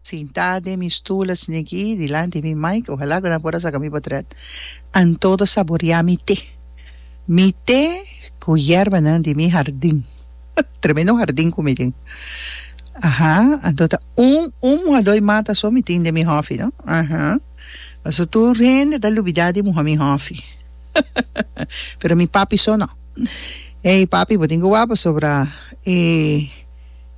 Sintá den mi stoel a snikí dilanti mi Mike, ojalá ku nan por a saka mi potret. Anto ta saboriá mi té. Mi té ku yerbanan di mi hardin. Tremendo hardin ku mi tin. Aha, anto ta un, un muha doi mata so mi tin den mi hòfi, no? Aha. Paso tur hende ta lubidá di muha mi hòfi. Pero mi papi so, no. Ey, papi, bo tin ku wak pasobra e.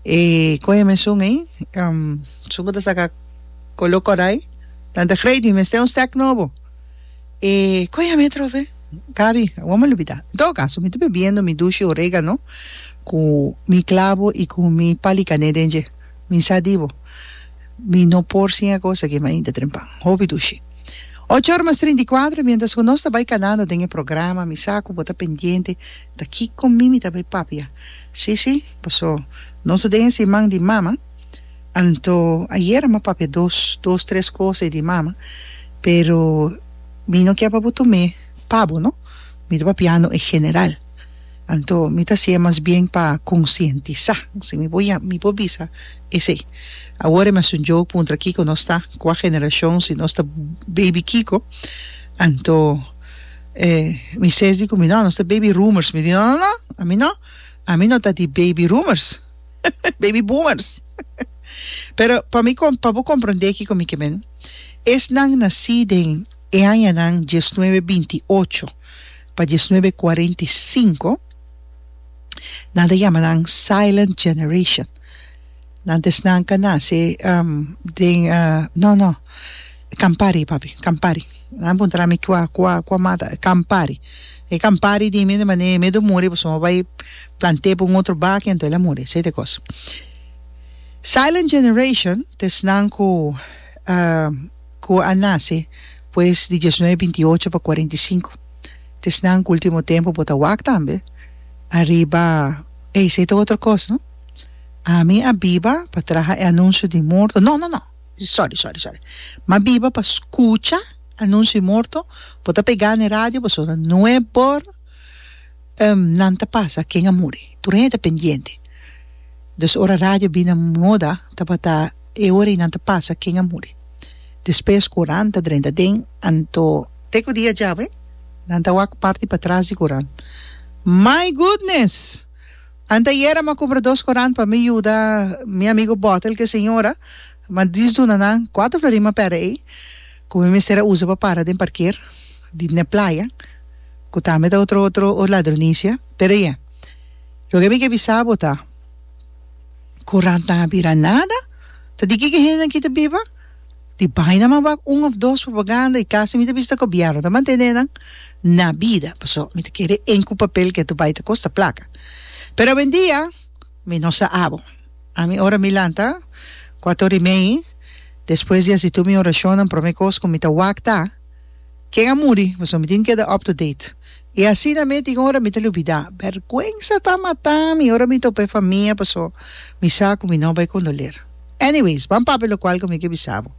E con e mesun ey mesun cu ta saca colo corai tanta grei tin mester un stack nobo e con ya metro fe Gaby awor mi a lubida en todo caso mi ta bebiendo mi dushi oregano cu mi clavo y cu mi pali cane den dje mi sa di bo mi no por siña cosa que mi ainda trempa hopi dushi ocho ora mas trinta y cuatro mientras cu nos ta bay canando den e programa mi sa cu bo ta pendiente Ta kiko mi mi ta bai papia? Sí, sí, paso nos ta den e siman di mama, anto ayera mi a papia dos, dos tres cosa ei di mama, pero mi no kier pa bo tome pa bo no, mi ta papiando en general, anto mi ta haci'e mas bien pa concientisa, si mi por mi por bisa esei, awor e mi a haci un joke puntra kiko nos ta, cua generacion, si nos ta baby kiko, anto. E mi ses di cu mi no, nos ta baby rumors. Mi di no, no, no, a mi no, a mi no ta di baby rumors, baby boomers. Pero pa mi, pa bo comprende kico mi ke men, esnan naci den e añanan diesnuebe binti ocho pa diesnuebe cuarenta i cinco, nan ta yama nan silent generation. Nan ta esnan ka nase den no no Campari papi Campari nan a puntra mi cua cua cua mata Campari e Campari dime de manera e medio muri pasobra bo bai plante pa un otro baki anto el a muri esei ta e cos silent generation ta esnan cu cu a nase pues di diecinuebe binti ocho pa cuarenta y cinco ta esnan cu ultimo tempo bo ta wak tambe ariba Eisei ta otro kos no. Ami a biba pa traha e anunsio di morto, no, no, no, sòri, sòri, sòri, mi a biba pa skucha e anunsio di morto, bo ta pegá na e radio, bo sona nue bor, nan ta pasa ken a muri, tur hende ta pendiente, dus ora radio a bini na moda tabata e ora ei nan ta pasa ken a muri, despues koran ta drenta den anto. Te ku dia djawe nan ta wak parti pa tras di kurant. My goodness! Anteayer a m'a kumpra dos kurant pa mi yuda mi amigu Bottle ku e señora. M'a dis duna nan kuater florin m'a pèrdè ei ku mi mester a usa pa para den parker di dna e playa ku tambe ta otro otro ladronisia. Pero yè, loke mi ke bisa bo ta, kurantnan a bira nada. Ta di kiko e hendenan ki ta biba? Di baina man wak un of dos propaganda y casi mi ta bisa gobierno ta mantene nan na bida paso mi ta kere en cu papel ke Dubai ta kosta placa pero awendia mi no sa abo ami ora mi lanta cuato ori y mei despues di haci tur mi oracionnan prome cos cu mi ta wak ta Ken a muri? Pasobra mi tin keda up to date. I asina mes tin ora mi ta lubida. Bergwensa ta mata mi ora mi topa e famia paso mi sa ku mi no bai kondoler. Anyways, ban papia lokual ku mi ke bisa bo.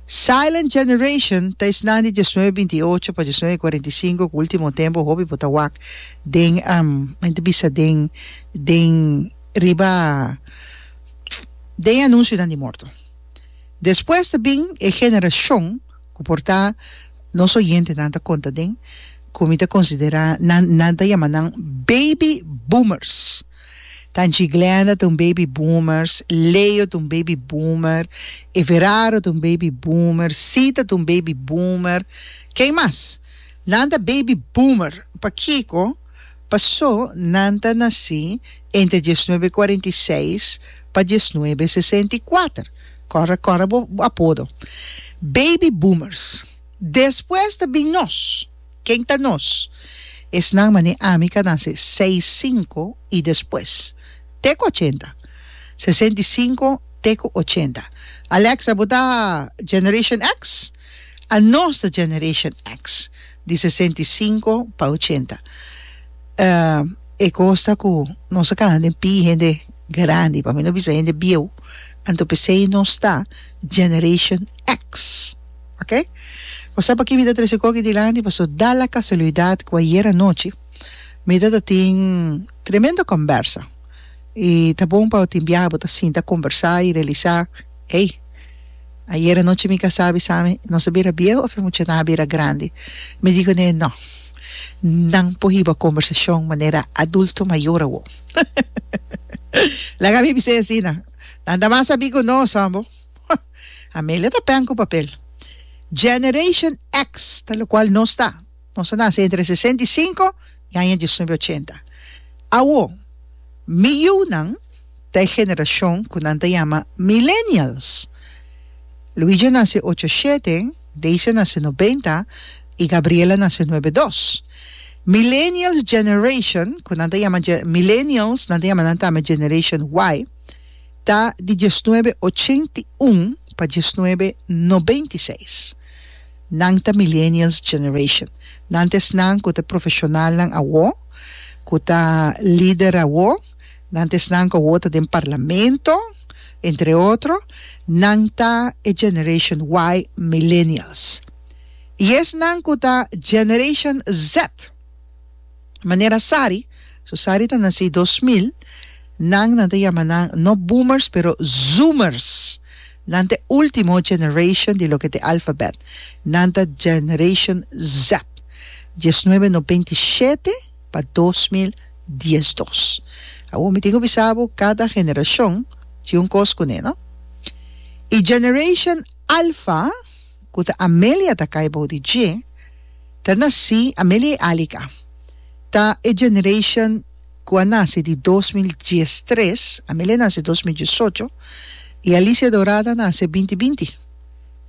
Silent generation ta esnan di diasnuebe binti i ocho pa diasnuebe kuarenta i sinku ku ultimo tempu hopi bo ta wak den men ta bisa den den riba den e anunsionan di morto. Despues ta bin e generashon. Ku por ta nos oyentenan ta konta den ku mi ta konsiderá nan, nan ta yama nan baby boomers. Tanchi Glenda ta un baby boomers, Leo ta un baby boomer, Everardo ta un baby boomer, Sita ta un baby boomer, ken mas? Nan ta baby boomer, pakiko? Paso, nan ta nací entre diesnuebe kuarenta i seis pa diesnuebe sesenta i kuater. Kòrda, kòrda bo apodo. Baby Boomers. Despues ta bin nos. Ken ta nos? Esnan manera ami ka nasé seis i sinku i despues. Te ku ochenta. Sesenta i sinku te ku ochenta. Alexa, bo ta Generation X? Anos ta Generation X. di sesenta i sinku pa ochenta e kosta ku nos a kaha den pii hende grandi pa mi no bisa hende bieu anto p'esei nos ta generation X ok bo sa paki mi ta trese koki dilanti paso da la kasulidat ku ayer anochi mida ta tin tremendo kòmbersa i ta bon pa tin biaha bo ta sinta kombersá i realisá ey Ayer anochi mi kasabi Sami nos a bira biehu of e muchanan a bira grandi. Mi digo n'e no. Nan por hiba kombersashon manera adulto mayor awor. Laga mi bis'e asina. Nan ta mas sabi ku nos, ho'n bo. Amelia ta pen ku papel. Generation X ta lokual nos ta. Nos a nase entre e sesenta i sinku i aña diesnuebe ochenta. Awo, mi yunan ta e generashon ku nan ta yama Millennials. Luigi a nase ocho shete, Daisy a nase nobenta i Gabriel a nase nuebe dos. Millennials Generation, ku nan ta yama dje Millennials, nan ta yama nan tambe Generation Y, ta di diesnuebe ochenta i un pa diesnuebe nobenta i seis. Nan ta Millennials Generation. Nan ta esnan cu ta e profesionalnan awo, cu ta lider awo. Nan ta esnan cu awo ta den Parlamento, entre otro. Nan ta e Generation Y Millennials. Y esnan cu ta Generation Z. Manera Sari, so Sari ta nací dos mil, nan nan ta yama nan no boomers pero zoomers. Nan ta e último generation di loke ta e alfabet. Nan ta Generation Z, diesnuebe nobenta i shete pa dos mil diesdos. Awor mi tin ku bisa bo kada generashon tin un kos kuné, no? I Generation Alfa. ku ta Amelia ta kai bou di dje, ta nasí Amelia i Alica. Ta e generation ku a nase di dos mil dies tres, Amelia nase dos mil dies ocho i Alicia Dorada nase binti binti.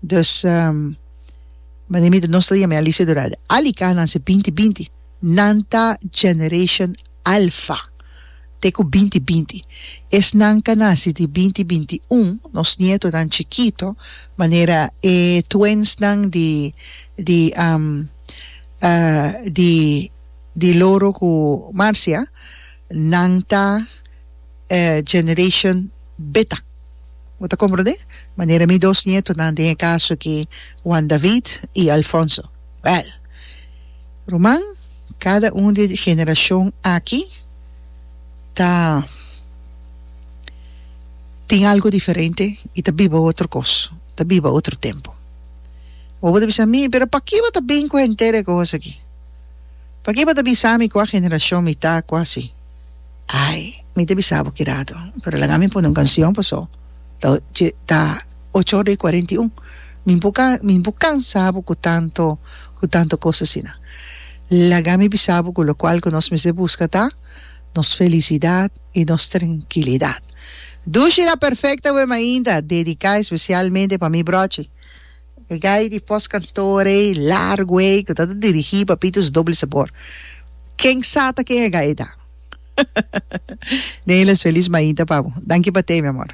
Dus manera mi ta nos ta yam'e Alicia Dorada. Alica a nase binti binti. Nan ta generation. Alfa, te ku binti binti. Esnan ka nasi di binti binti un, nos nietonan chikito, manera e twensnan di di di di Loro ku Marcia, nan ta generation Beta. Bo ta komprondé? Manera mi dos nietonan den e kaso aki Juan David i Alfonso. Bèl. Ruman, cada un di e generacion aki ta tin algo diferente y ta biba otro cos, ta biba otro tempo. Bobo ta bisa mi, pero paki bo ta bin cu henter e cos aki? Paki bo ta bisa mi cua generacion mi ta, cua si? Ay, mi ta bisa bo kirato, pero laga mi pone un cancion paso ta ta. Ocho ora i kuarenta i un. Mi bo ka, mi bo kansa bo ku tanto, ku tanto kos asina. Laga mi bisa bo ku lokual ku nos mester buska ta nos felisidat i nos trankilidat. Dushi na Perfecta Web Ainda, dediká espesialmente pa mi brochi. E gai di pos kantor ei, largu ei, ku ta ta dirigí Papitos Doble Sabor. Ken sa ta ken e gai ei ta? Neiles, felis mainta pa bo. Danki pa t'e, mi amor.